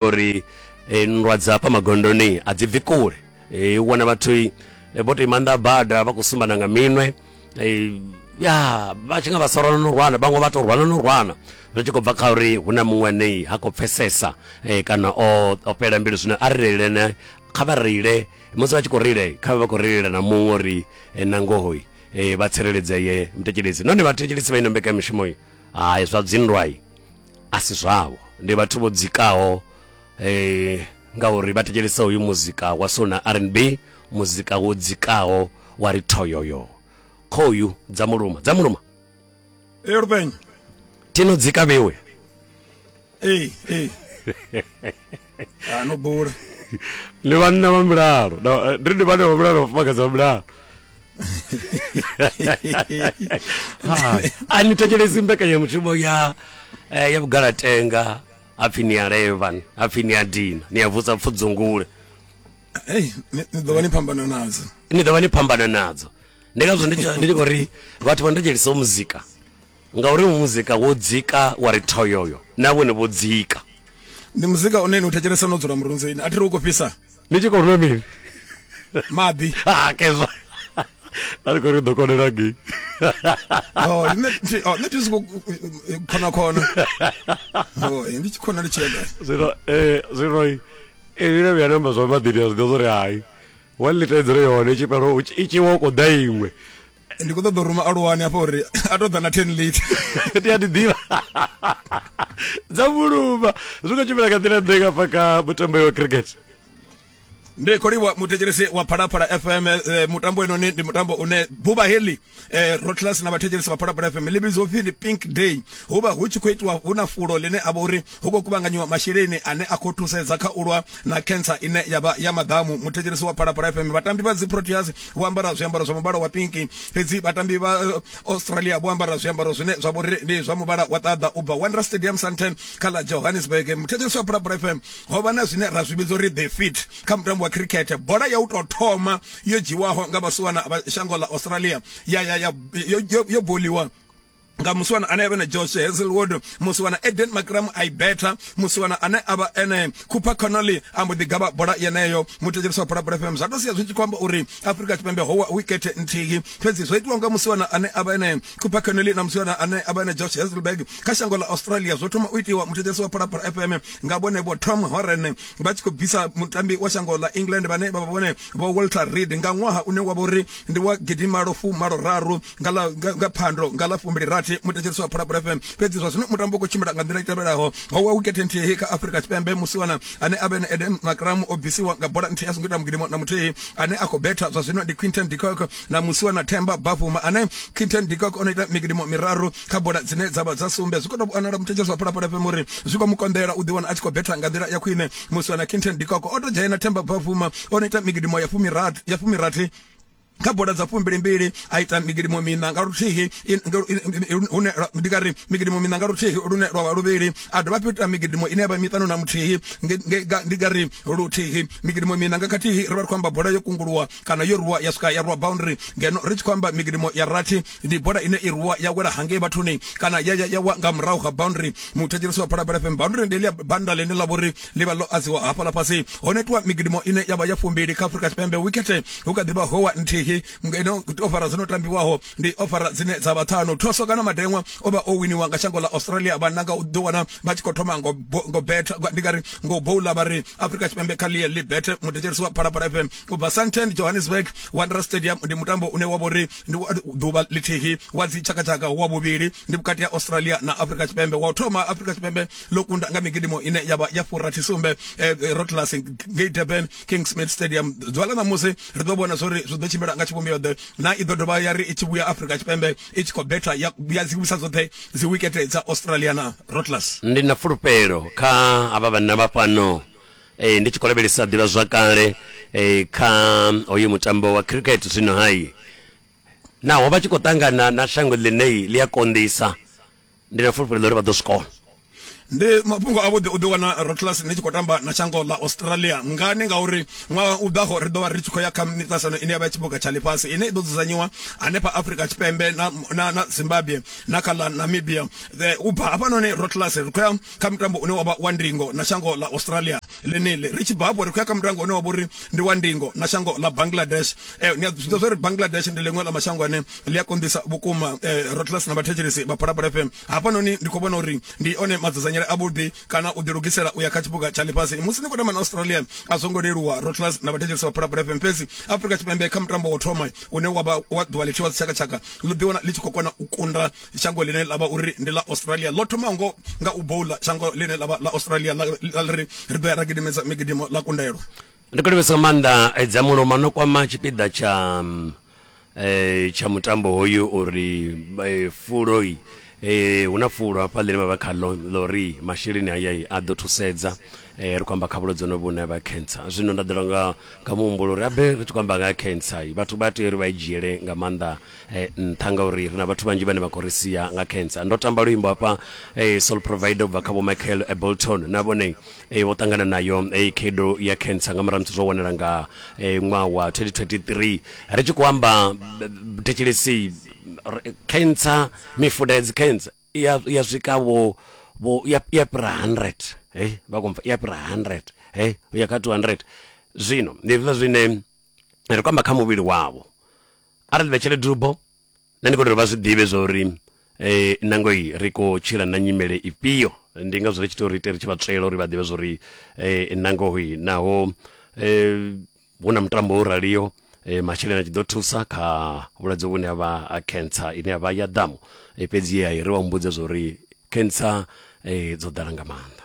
uri e, nndwa dza hafha magondoni a dzi bvi kule e, u wana vhathu e, vho to imannḓa bada vha khou sumbana nga minwe e, ya vha tshi nga vha sa rwana no rwana vhaṅwe vha to rwana no rwana zwi tshi khou bva kha uri hu na muṅwe anei ha khou pfesesa e, kana o, o fhela mbilu zwino a ri reilene kha vha reile musi vha tshi khou reile kha vha vha khou reilela na muṅwe uri e, na ngohoi e, vha tsireledzeye mthetshelesi nahone vhathetshelesi vha ino mbekamishumo hai zwa dzindwai a si zwavho ndi vhathu vho dzikaho um ngauri vha thetshelesa hoyu muzika wa sona r n b muzika wo dzikaho wa ri thoyoyo khoyu dza muluma dza muluma erubenye tino dzika vhewe ee ee ah, no bula ndi vhanna vha mulalo eh, ndi ndi vhanna vha mulalo vhafumakadzi vha mulalo a ni thetshelesi mbekanyamushumo ya eh, ya vhugalatenga hapfi ni ya levan hapfi ni ya dina ni ya vusa pfudzungule ni ḓo vha ni phambana nadzo ni ḓo vha ni phambana nadzo ndi ngazwo ndi tshi khou ri vhathu vha ndo dzhelisa muzika Ngauri muzika wo dzika wa ri thoyoyo, na vhone vho dzika. Ndi muzika une ni u thetshelesa no dzula murunzini, a thi ri u khou fhisa. Ni tshi khou nwa mini? Maḓi. Ha kezwa. A ri khou ri ḓo konela ngei. Oh, nṋe thi oh, nṋe thi soko khona khona. Oh, ndi tshi khona ndi tshi ya gai? Zwino eh zwino i ile vhuya namba zwa maḓini a zwi ḓo zwo ri hai. One liter i dzule yone i tshi fhela i tshi wa u khou ḓa iṅwe. ndi khou ṱoḓa u ruma aluwani hafha uri a tou ḓa na ten late ti a ti ḓivha dza vhuluma zwi khou tshimbila nga nḓila ḓe nga fa ka mutambo wa cricket ndi kholiwa muthetshelesi wa phalaphala fm eh, mutambo enoni ndi mutambo une buba heli eh, rotlas na vhathetshelesi vha phalaphala fm ḽi vhidzwa upfi ndi pink day hu vha hu tshi khou itiwa hu na fulo ḽine a vha uri hu khou kuvhanganyiwa masheleni ane a khou thusedza kha u lwa na cancer ine ya vha ya maḓamu muthetshelesi wa phalaphala fm vhatambi vha dzi proteas vho ambara zwiambaro zwa muvhala wa pinki fhedzi vhatambi vha eh, australia vho ambara zwiambaro zwine zwa vhori ndi zwa muvhala wa ṱaḓa u bva wondera stadium santen kha ḽa johannesburg muthetshelesi wa phalaphala fm ho vha na zwine ra zwi vhidza uri the fit kha mutambo wa cricket bola ya u tou thoma yo dzhiwaho nga vhasiwana vha shango ḽa australia ya ya ya yo, yo, yo boliwa nga musiwana ane avha na Josh Hazelwood musiwana Eden Makram i better musiwana ane avha ene Cooper Connolly ambo ḓi gavha bola yeneyo mutetshelisa bola bola FM zwa to sia zwi tshi kwamba uri Afrika Tshipembe howa wicket nthihi fhedzi zwo itiwa nga musiwana ane avha ene Cooper Connolly na musiwana ane avha ene Josh Hazelberg kha shango ḽa Australia zwo thoma u itiwa mutetshelisa bola bola FM nga vhone vho Tom Horan vha tshi khou bvisa mutambi wa shango ḽa England vhane vha vha vhone vho Walter Reed nga ṅwaha une wa vha uri ndi wa gidimalo fu malo raru nga ḽa nga phando nga ḽa fumbili rathi muthetshelesi wa phalaphala fm fhedzi zwa zwino mutambo u khou tshimbila nga nḓila i tevhelaho ho wa wikete nthihi kha afurika tshipembe musiwana ane a vha ene eden makramu o bvisiwa nga bola nthihi a songo ita mugidimo na muthihi ane a khou betha zwa zwino ndi quinton dicock na musiwana themba bavuma ane quinton dicock o no ita migidimo miraru kha bola dzine dza vha dza sumbe zwi khou tou vhonala muthetshelesi wa phalaphala fm uri zwi khou mu konḓela u ḓiwana a tshi khou betha nga nḓila ya khwine musiwana quinton dicock o tou dzhena themba bavuma o no ita migidimo ya fumirathi kha bola dza fumbili mbili a ita migidimo mina nga luthihi hune ndi nga ri migidimo mina nga luthihi lune lwa vha luvhili a dovha fhethu ita migidimo ine ya vha miṱanu na muthihi ndi nga ri luthihi migidimo mina nga khathihi ri vha ri khou amba bola yo kunguluwa kana yo ruwa ya swika ya ruwa boundary ngeno ri tshi khou amba migidimo ya rathi ndi bola ine i rwiwa ya wela hangei vhathuni kana ya ya wa nga murahu ha boundary muthetshelesi wa phalaphala fm boundary ndi ḽia banda ḽine ḽa vhori ḽi vha ḽo adziwa hafhaḽa fhasi ho netiwa migidimo ine ya vha ya fumbili kha afurika tshipembe wikete hu kha ḓi vha howa nthihi ino ofara dzo no tambiwaho ndi ofara dzine dza vha ṱhanu thoswa kana madeṅwa o vha o winiwa nga shango ḽa australia vhanna nga u ḓi wana vha tshi khou thoma ngo ngo betha ndi nga ri ngo boula vha ri afurika tshipembe kha ḽie ḽi bethe muthetshelesi wa phalaphala fm u bva santen johannesburg wanderers stadium ndi mutambo une wa vhori Ndi wa ḓuvha ḽithihi wa dzitshakatshaka wa vhuvhili, ndi vhukati ha Australia na Afrika Tshipembe. Wa u thoma, Afrika Tshipembe ḽo kunda nga migidimo ine ya vha ya furathisumbe Rotterdam ngei Durban, Kingsmead Stadium. Ḓuvha ḽa ṋamusi ri ḓo vhona zwo ri zwi ḓo tshimbila nga tshivhumbeo-ḓe na i ḓo dovha ya ri i tshi vhuya Afrika Tshipembe i tshi khou betha ya dzi wisa dzoṱhe dzi wikete dza Australia na Rotterdam. Ndi na fulufhelo kha havha vhanna vha fhano. e, ndi tshi khou lavhelesa ḓivhazwakale e, kha hoyu mutambo wa cricket zwino hai naho vha tshi khou ṱangana na shango ḽinei ḽi a konḓisa ndi na fulufhelo uri vha ḓo swikona ndi mafhungo avhuḓi u ḓi wana rotlas ni tshi khou tamba na shango ḽa australia ngani ngauri ṅwaha u ḓaho ri ḓo vha ri tshi khou ya kha miṱasano ine ya vha tshibuga tsha ḽifhasi ine i ḓo dzudzanyiwa hanefha afrika tshipembe na, na, na zimbabwe na kha ḽa namibia u bva hafhanoni rotlas ri khou ya kha mutambo une wavha wa ndingo na shango ḽa australia ḽeneḽi ri tshi bva hafho ri khou ya kha mutambo une wavha uri ndi wa ndingo na shango ḽa bangladesh eh, ni a zwiḓivha zwa uri bangladesh ndi ḽiṅwe ḽa mashango ane ḽi a konḓisa vhukuma eh, rotless na vhathetshelesi vha phalaphala fm hafhanoni ndi khou vhona uri ndi one madzudzanyele avhuḓi kana u ḓilugisela u ya kha tshipuga tsha ḽifhasi musi ni khou tamba na australia a zwo ngo leluwa rotless na vhathetshelesi vha phalaphala fm fhedzi afrika tshipembe kha mutambo wa thoma une wavha wa ḓuvha ḽithiwa dzitshakatshaka ḽi ḓiwana ḽi tshi khou kona u kunda shango ḽine ḽa vha uri ndi ḽa australia ḽo thoma ngo nga u boula shango ḽine ḽa vha ḽa australia ḽa ri ri ḓo ya ra gidimedza migidimo ḽa kundelo ndi khou livhesa nga maanḓa eh, dza muloma no kwama tshipiḓa tsha mm, eh, tsha mutambo hoyu uri eh, fuloi eh, hu na fulo hafha ḽine vha vha khaḽo ḽori masheleni aya a ḓo thusedza eh, ri khou amba kha vhulwadze honovhu vhune vha cancer zwino nda ḓola nga nga muhumbulo uri abe ri tshi khou amba nga cancer vhathu vha tea uri vha i dzhiele nga maanḓa eh, nṱha ngauri ri na vhathu vhanzhi vhane vha khou ri sia nga cancer ndo tamba luimbo hafha eh, soul provider ubva kha vho michael eh, bolton na vhone eh, vho ṱangana nayo eh, khedo ya cancer nga murahu musi zwo wanala nga eh, ṅwaha wa 2023 ri tshi khou amba thetshelesi cancer mifuda ya dzicancer ya swika vho vho ya ya pra 100 eh vha komfa ya pra 100 eh ya kha 200 zwino ndi zwiḽa zwine ri kwamba kha muvhili wavho arali vha tshele dubo na ni khou vha zwi ḓivhe zwa uri um eh, nangoi ri khou tshila na nyimele ifhio ndi nga zwi ri tshi tea uri ite ri tshi vha tswela uri vha ḓivhe zwa uri um nangoi naho um hu na mutambo wo raliho e, masheleni a tshi ḓo thusa kha vhulwadze vhune ha vha ha cancer ine ya vha ya ḓamu e, fhedzi ye a i ri wa mmbudza zwa uri cancer e, dzo ḓala nga maanḓa